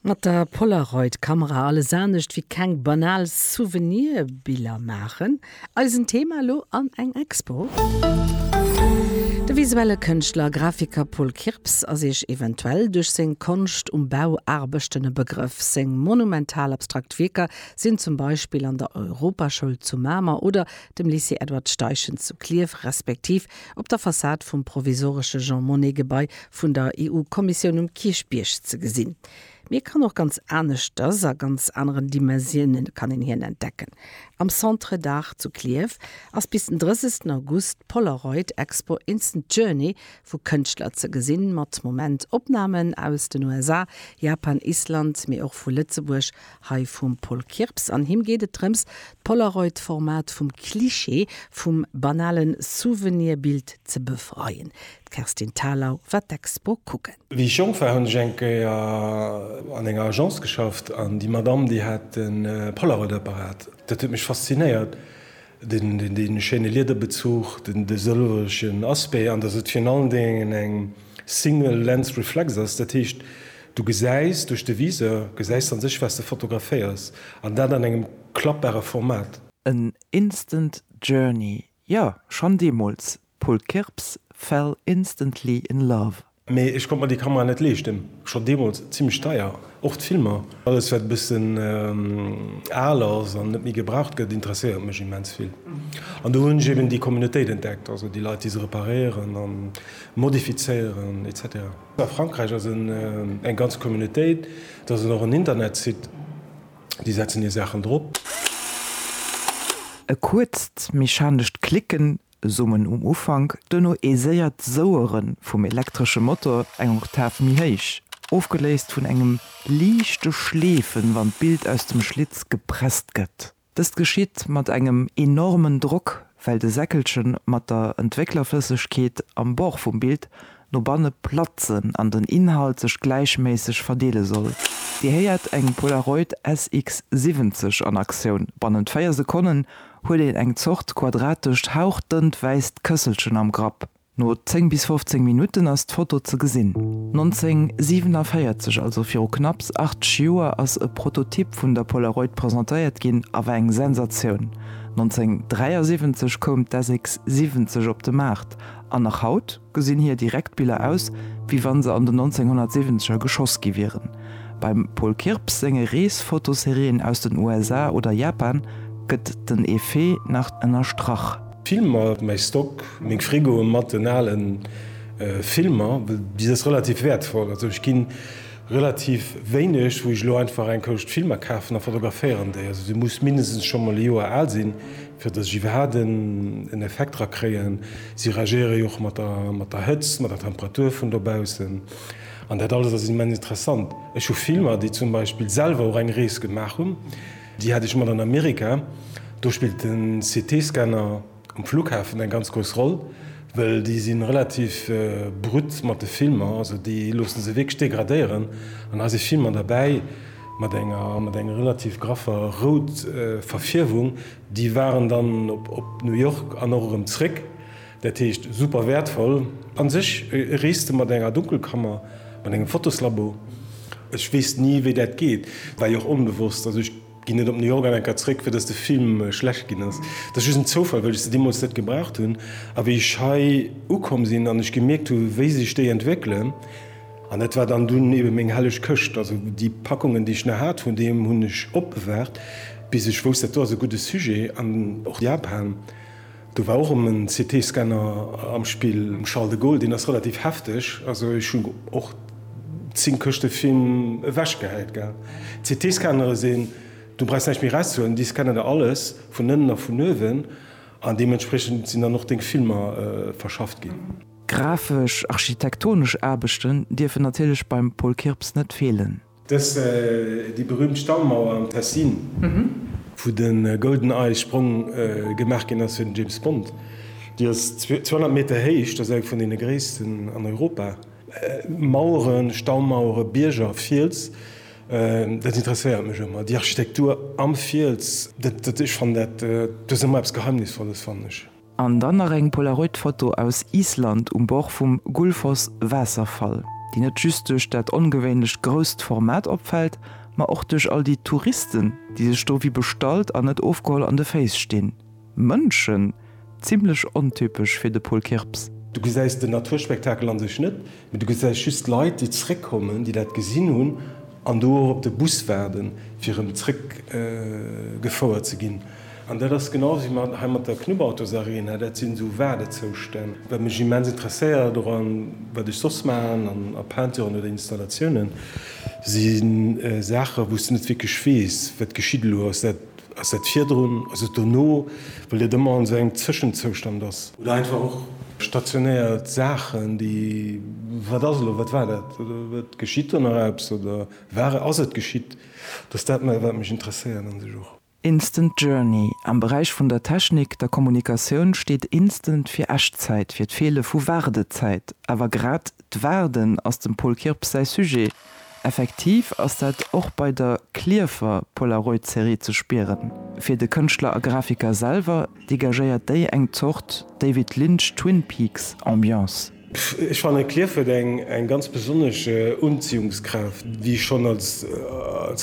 Mat der Polaroid Kamera alles anescht wéi keng banal Souvenir Biller maachen, eisen Thema elo an eng Expo. De visuelle Kënschtler a Grafiker Paul Kirps ass Iech eventuell duerch seng Konscht um Bau Aarbechten e Begrëff. Seng monumental abstrakt Wierker sinn zum Beispill an der Europaschoul zu Mamer oder dem Lycée Edward Steichen zu Klierf respektiv op der Fassad vum provisoresche Jean-Monnet-Gebai vun der EU-Kommissioun um Kierchbierg ze gesinn. Mee e kann och ganz aneschters, a ganz aneren Dimensioune kann een hien entdecken. Am Centre d'Art zu Clierf ass bis den 30 August d'Polaroid Expo Instant Journey vu Kënschtler ze gesinn, mat Momentopnamen aus den USA, Japan, Island, mee och vu Lëtzebuerg Hei vum Paul Kirps, an him geet et drëms, d'Polaroid-Format vum Klischee vum banale Souvenir-Bild ze befreien. D'Kerstin Thalau war d'Expo kucken. Wéi ech jonk war, hunn ech eng Kéier an enger Agence geschafft, an déi Madamm, déi hat e Polaroid-Apparat. Dat huet mech faszinéiert, dee schéine Liederbezuch, de sëlweregen Aspect, an datt et virun allen Déngen eng Single Lens Reflex ass, dat heescht du gesäis duerch de Viseur gesäis de an sech wat s de fotograféiers, an dat an engem klappbare Format. En instant journey, jo, schonn deemools Paul Kirps fell instantly in love. Mee ech konnt mer déi Kamera net leeschten, schon deemols zimmlech deier. Och d'Filmer. Alles wat e bëssen al ass an net méi gebraucht gëtt interesséiert mech immens vill. An do hunn ech eben déi Communautéit entdeckt, also déi Leit déi se reparéieren a modifizéieren etc. A Frankräich ass en eng ganz Communautéit, et ass en och en Internetsite, déi setzen hir Saachen drop. E kuerzt mechanescht Klicken Summen um Ufank, duerno ee séiert Souere vum elektresche Motor, eng Oktav méi héich, ofgeléist vun engem liichte Schleefen, wann d'Bild aus dem Schlitz gepresst gëtt. Dëst geschitt mat engem enormen Drock, well de Säckelche mat der Entwécklerflëssegkeet am Bord vum Bild no banne platzen an den Inhalt sech gläichméisseg verdeele soll. Dir héiert eng Polaroid SX 70 an Aktioun. Bannent 4 Sekonnen Huet een eng zort quadratescht hauchdënnt wäisst Kësselchen am Grapp. No 10 bis 15 Minutten ass d'Foto ze gesinn. 1947, also viru knapps 80 Joer, ass e Prototyp vun der Polaroid presentéiert ginn a war eng Sensatioun. 1973 koum d'SX 70 op de Maart. An nach haut? Gesinn hir Direktbiller aus, wéi wann se an den 1970er geschoss gi wieren. Beim Paul Kirps senge Reesfotoserien aus den USA oder Japan gëtt den Effet nach ënnerstrach. Filmer, mäi Stock, meng Frigoe mat den ale Filmer, bis ass relativ wäertvoll. Also ech ginn relativ wéineg, wou ech elo einfach eng Kousch Filmer kafen a fotograféieren déi. Also se muss mindestens scho mol e Joer al sinn. Fir dass ech iwwerhaapt en Effekt dra kréien, si reagéiere jo och mat der Hëtzt, mat der Temperatur vun dobaussen an dat alles ass immens interessant. Ech hu Filmer, déi zum Beispill selwer och eng Rees gemaach hunn, déi hat ech emol an Amerika. Do spillt de CT-Scanner um Flughafen eng ganz grouss Roll, well déi si relativ brut mat de Filmer, also déi loosse se wierklech degradéieren an da si Filmer derbäi, mat enger relativ graffer rout Verfierwung, déi waren dann op New York an och erëm zréck, dat heescht super wäertvoll. A sech e Reeste mat enger Dunkelkammer, mat engem Fotoslabo, ech weess ni wéi dat geet, war jo och onbewosst, also ech ginn net op New York an enker zréck fir datt de Film schlecht ginn ass, dat ass just en Zoufall, well ech se deemools net gebraucht hunn a wéi ech hei ukomm sinn an ech gemierkt hu wéi sech déi entwéckelen, An dat war dann dunn eben meng helleg Këscht. Also déi Packungen, déi ech nach hat vun deem, hunn ech opbewaart, bis ech wousst, dat do ass e gudde Sujet. An och Japan, do war och erëm en CT-Scanner am Spill, um Charles de Gaulle, deen ass relativ hefteg. Also ech hunn och 10 Këschte Film ewechgehäit, gell. CT-Scannere sinn, do brauchs näischt méi erauszehuelen, déi scanne der alles, vun ënnen a vun uewen, an deementspriechend sinn dann och deng Filmer verschafft ginn. Grafesch, architektonesch Aarbechten dierfen natierlech beim Paul Kirps net feelen. Dës déi berüümt Stallmauer am Tessin. Wou de Goldeneye Sprong gemaach ginn ass fir den James Bond. Déi ass 200 Meter héich, dat ass eng vun deene gréissten an Europa. Maueren, Stallmauere, Bierger, Fiels, dat interesséiert mech ëmmer. Déi Architektur am Fiels, dat, ech fannen dat, do ass ëmmer eppes Geheimnisvolles, fannen ech. An dann nach eng Polaroid Foto aus Island um Bord vum Gullfoss Waasserfall, déi net just duerch dat ongewéinlecht grousst Format opfält, ma och duerch all déi Touristen, déi sech do wéi bestallt an net ofgeholl an de Féiss stinn. Mënschen? Zimmlech ontypesch fir de Paul Kirps. Du gesäis den Naturspektakel an sech net. Mee du gesäis just Leit, déi zréckkommen, déi dat gesinn hunn an do och op de Bus waarden, fir erëm zréckgefouert ze ginn. An dat ass genau wéi mat hei mat der Knubautos-Arena. Dat sinn esou Waardezoustänn. Wat mech immens interesséiert och an wat ech soss maachen an a Peinturen oder Installatiounen, si Saachen, wou s de net wierklech weess, Wat geschitt elo? Ass dat Ass dat virdrun? Ass et dono? Well et ëmmer an esou engem Zwëschenzoustand ass. Oder einfach och stationär Saachen, déi, wat ass elo, wat war dat oder wat geschitt do nach eppes oder war, ass et geschitt? Et ass dat wat mech interesséiert an sech och. Instant Journey, Am Beräich vun der Technik, der Kommunikatioun steet instant fir Echtzäit, fir d'Feele vu Waardezäit. Awer grad d'Waarden ass dem Paul Kirps säi Sujet. Effektiv ass dat och bei der Klierfer Polaroid-Serie ze spieren. Fir de Kënschtler a Grafiker selwer degagéiert déi eng Zort David Lynch Twin Peaks Ambiance. Ech fannen Klierf huet eng ganz besonnesch Unziehungskraaft, wéi ech schon als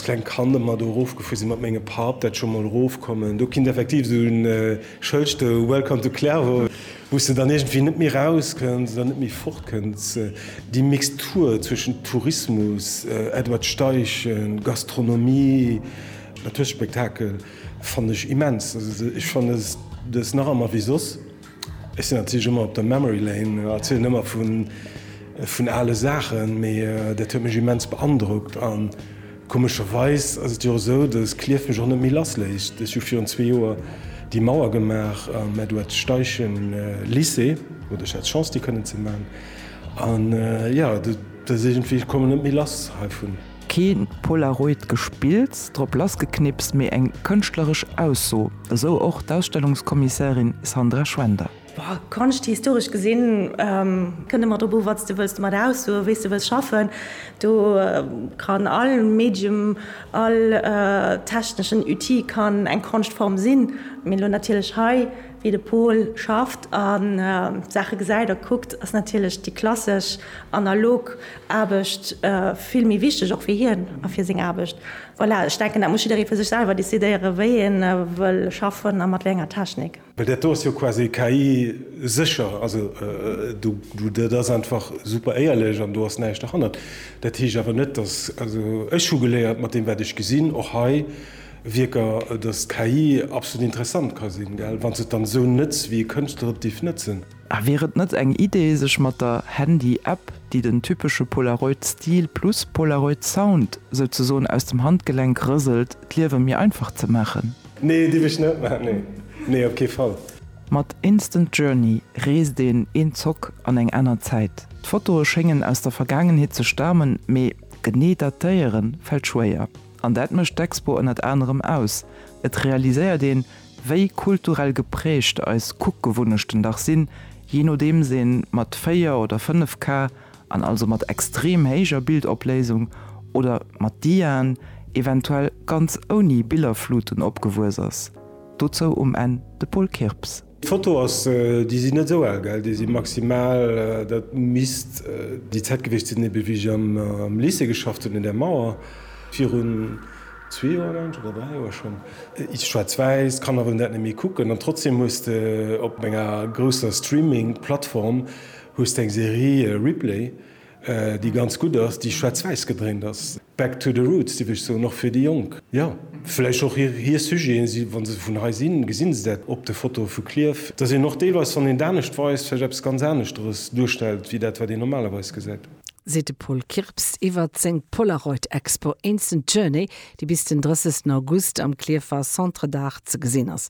kleng Kand emmer do erof gefuer sin mat mengem Papp, dat schon mol erof kommen do kinnt effektiv esou en Schëltchen Welcome to Clairvaux. Wou s de dann iergendwéi net méi raus kënns oder net méi fort kënns. Déi Mixtur zwëschent Tourismus, Edward Steichen, Gastronomie, Naturspektakel fannen ech immens. Also ech fanne dës nach ëmmer wéi soss. Ech sinn natierlech ëmmer op der Memory Lane, erzielen ëmmer vun ale Saachen, mee dat huet mech immens beandrockt an Komescherweis ass et jo esou, dass Klierf mech och net méi lass léisst. Ech hu virun zwee Joer déi Mauer gemaach am Edward Steichen Lycée, oder ech hat d'Chance, déi kënnen ze maachen. An, jo, dat ass iergendwéi, ech kommen net méi lass heivun. Kee Polaroid gespills, drop lass geknipst, mee eng kënschtleresch Ausso, esou och d'Ausstellungskommissärin Sandra Schwender. Konscht historesch gesinn kënne mer drop u wat s de wëlls domat aussoen, wéi s de wëlls schaffen. Do kann all Medium, all techneschen Outil kann eng Konschtform sinn. Mee elo natierlech hei, wéi de Pol schafft a d'Saache gesäit a kuckt, ass natierlech déi klassesch analog Aarbecht vill méi wichteg och fir hien a fir seng Aarbecht. Voilà, ech denken dat muss jidderee fir sech selwer decidéieren, wéi ee wëll schaffen a mat wéi enger Technik. Well dat do ass jo quasi KI-sécher. Also dat ass einfach super éierlech an do ass näischt derhannert. Dat heescht awer net, dass, also ech hu geléiert mat deem wat ech gesinn, och hei Wierker, dass d'KI absolut interessant ka sinn, wa se et dann esou nëtz, wéi e Kënschtler et dierf nëtzen. A wier et net eng Idee, sech mat der Handy-App, déi den typesche Polaroid-Stil plus Polaroid-Sound souzesoen aus dem Handgelenk rëselt, d'Liewe méi einfach ze maachen? Nee, dierf ech net maan, nee. Nee, op kee Fall. Mat Instant Journey reest een een Zock an eng aner Zäit. D'Fotoe schéngen aus der Vergaangenheet ze stamen, mee genee datéiere fält schwéier. An dat mécht d'Expo ënnert anerem aus. Et realiséiert een, wéi kulturell geprägt eis Kuckgewunnechten dach sinn, jee nodeems ee mat 4 oder 5K. an also mat extrem héijer Bildopléisung oder mat Diaen, eventuell ganz ouni Billerfluten, opgewuess ass. Dozou um Enn de Paul Kirps. D'Foto ass, déi sinn net esou al, gell? Déi si maximal, dat misst déi Zäit gewiescht sinn, ebe wéi ech am Lycée geschafft hunn, un där Mauer, virun zwee Joer, mengen ech, oder dräi Joer schonn. Iis schwaarz-wäiss, d'Kanner wëllen dat net méi kucken, an trotzdem hues de op enger grousser Streaming-Plattform, Hues deng Serie Ripley, déi ganz gutt ass, déi schwaarz-wäiss gedréint ass, back to the roots dierf ech soen, och fir déi Jonk, jo, vläicht och hir Sujeten, si wa se vun hei sinn, gesi se dat op de Fotoe vu Klierf, dass een och deelweis, wann een d'anescht weist, vläicht eppes ganz aneschteres duerstellt wéi dat wat een normalerweis gesäit. Seet de Paul Kirps iwwert seng Polaroid-Expo Instant Journey, déi bis den 30 August am Klierfer Centre d'Art ze gesinn ass.